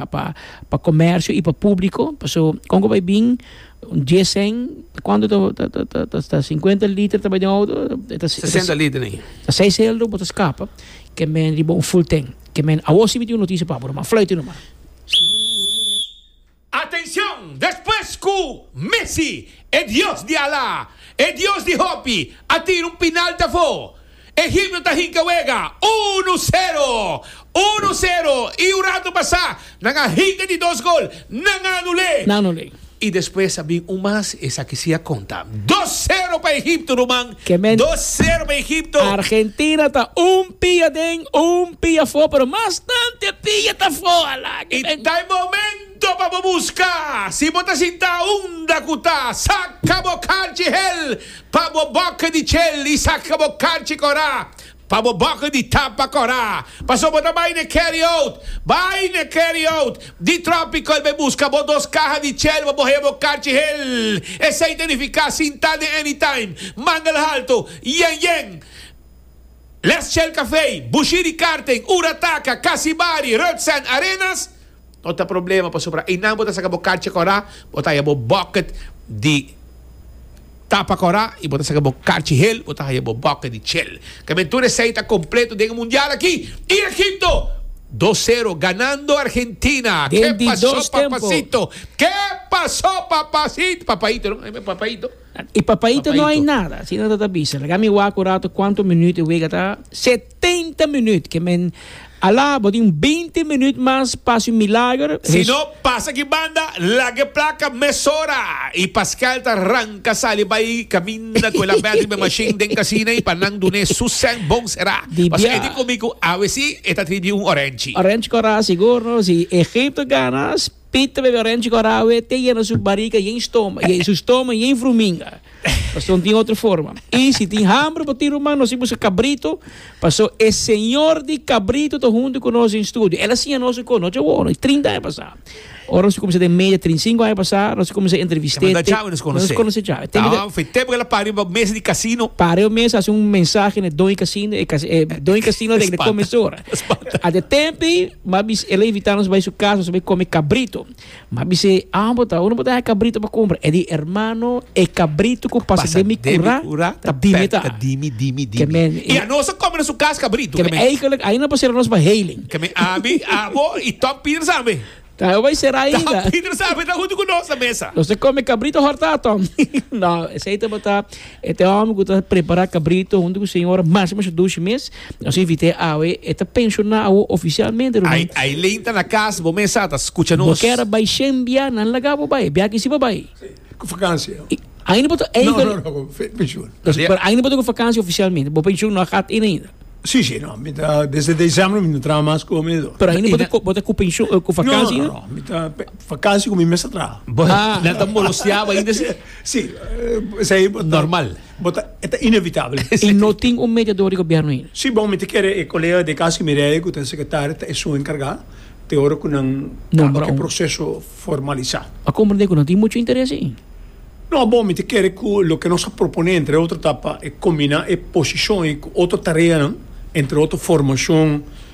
pa pa comercio y pa publico paso con cu bay bin un dies cen cuanto ta ta ta ta ta cincuenta liter ta bay den auto e ta sesenta liter ni ta seis celdo bo ta scapa ke men riba un full tank ke men awor si mi tin un noticia pa bo man fluite no man Atencion despues cu Messi e dios di ala e dios di hopi a tira un pinalti afo. E himno ta hinka wega, unu sero, unu sero, i un ratu pasá nan a hinka di dos gol, nan a anul'é. Nan a anul'é. I despues a bin un mas, esaki sí a konta. Dos sero pa Egipto, ruman, dos sero pa Egipto. Argentina ta un pia den, un pia afó, pero mastante pia ta afó, alá ke ben. Ta e momento pa bo buska, si bo ta sintá unda ku ta saka bo kanchi hel. Pa bo boka di chel i saka bo karchi korá, pa bo boka di tapa korá, pasobra bo ta bai na Keriot, bai na Keriot di trópiko, el bai buska bo dos kaha di chel pa bo heba bo karchi hel. Esei ta nifiká sintá den anytime, mangel haltu, yen yen, les chel kafei, bushí di karten, ura taka, kasibari, rötsand, arenas, No ta problema pasobra einan bo ta saca bo carcha cora, bo ta haya bo bucket di tapa cora y bo ta saca bo carchi hel, bo ta haya bo bucket di chel. Camen tur esey ta completo den e mundial aki y Egipto dos cero ganando Argentina. Den di dos tempo. Que paso papacito, papaito no, ebe papaito. E papaito no hay nada, asina ta ta bisa. Laga mi wak un rato cuanto minuto e wega ta. tenta minüt ke men a la bo tin beinti minüt mas pa hasi un milager. Si no, pasa ki banda, laga e plaka mesora i Pascal ta ranka sali bai kaminda ku el a bètri be mashin den kasina i pa nan dun'é su sèn bon será. Pasobra e di ku mi ku awe si e ta trib'é un orènchi. Orènchi korá sigur no si Egipto gana. Pita bebe oranchi cu arawe te yena su bariga yen stoma, yen su stoma yen fruminga. Paso no tin otro forma. Y si tin hambre bo tin ruman nos tin busca cabrito, paso e señor di cabrito ta hunto cu nos den studio. El a siña nos un cos, no ta bueno, trinta aña pasa. Ora nos a cuminsa den media trinta y cinco aña pasa, nos a cuminsa entreviste. Te manda djawe nos conoce. Nos conoce djawe. Te manda- Taban fitep gala pari ba mesa di casino. Pare un mes a haci un mensahe na doña casino, e cas- e doña casino den de Spanta. comensora. Spanta. A de tempi. M'a bis e levitanos bai su kas, nos a bai kome kabrito. M'a bis e, Abo ta, unu por ta haña kabrito pa kumpra? E di, Ermano, e kabrito ku pasa den mi kura ta dimi ta. Kemen, i anos a kome na su kas kabrito. Kemen, Eikelek, ainda no por sera nos pa heiling. Kemen, Ami, abo i Tom Pieter tambe. Ta, e bai sera ainda. Tom Pieter tambe ta huntu ku nos na mesa. Nos ta kome kabrito horta, Tom. No, esei tabata. E te hòmber ku ta prepará kabrito huntu ku señora mas mester dushi mes. Nos invit'é awe, e ta penshoná awo ofisialmente, ruman. Ai, ai Lane ta na kas, bo mesa ta skucha nos. Bo kera bai shen bia, nan laga bo bai, bia ki si bo bai. Si, ku fakansia. I ainda bo ta eiga. No, no, no, ku penshun. No, si, pero ainda bo ta ku fakansia ofisialmente. Bo penshun no a gat in ainda. Si, si, no, mi ta desde desèmbru mi no traha mas ku mi do. Pero ainda bo ta, bo ta ku penshun, ku fakansia ainda? No, no, no, mi ta fakansia ku mi mester traha. Bo, nan ta moloseaba ainda si. Sí, esei bo ta. Normal. Bo ta, e ta inevitabel. I no tin un mediador di gobierno ain. Sí, bon, mi ta kere e colega di Cassy Mireille, cu ta e secretario, ta e su encarga, te ora cu nan caba cu e proceso formalisa. A comprende cu no tin mucho interes ain. No, bon, mi ta kere cu loke nos a propone, entre otro, ta pa e combina e posicion ei cu otro tareanan, entre otro, formacion.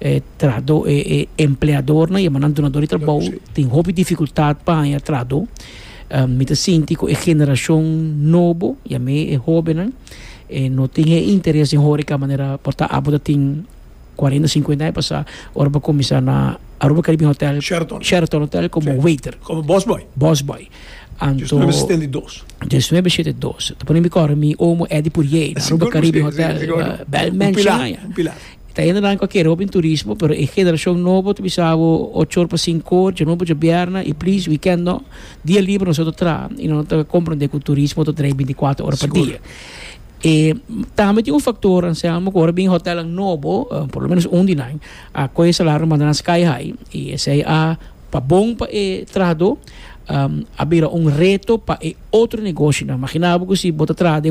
E trahadó e e empleadornan yama nan dunadó di trabou tin hopi difikultat pa haña trahadó mi ta sinti ku e generashon nobo yam'é e hóbennan e no tin e interes den hóreka manera por ta abo ta tin kuarenta sinkuenta aña pasá ora bo kuminsá na Aruba Caribbean Hotel Sheraton Sheraton Hotel komo waiter Komo bòsbòi bòsbòi anto Dies nueve setenta i dos dies nueve setenta i dos ta pone mi kòrda mi omo Eddie Purier na Aruba Caribbean Hotel bèl mènshi un pilar un pilar. E ta hende nan cu a kere hopi turismo, pero e generacion nobo ta bisa abo ocho or pa cinco or, djanobo, djabierna y please weekend no. Dia liber noso ta traha y no ta comprende cu turismo ta draai binticuater ora pa dia. E tambe tin un factor, Anselmo, cu ora bin e hotelnan nobo, por lo menos un di nan, a coge e salario a manda nan sky high y esey a pa bon pa e trahador, a bira un reto pa e otro negocionan. Magina abo cu si bo ta traha den un.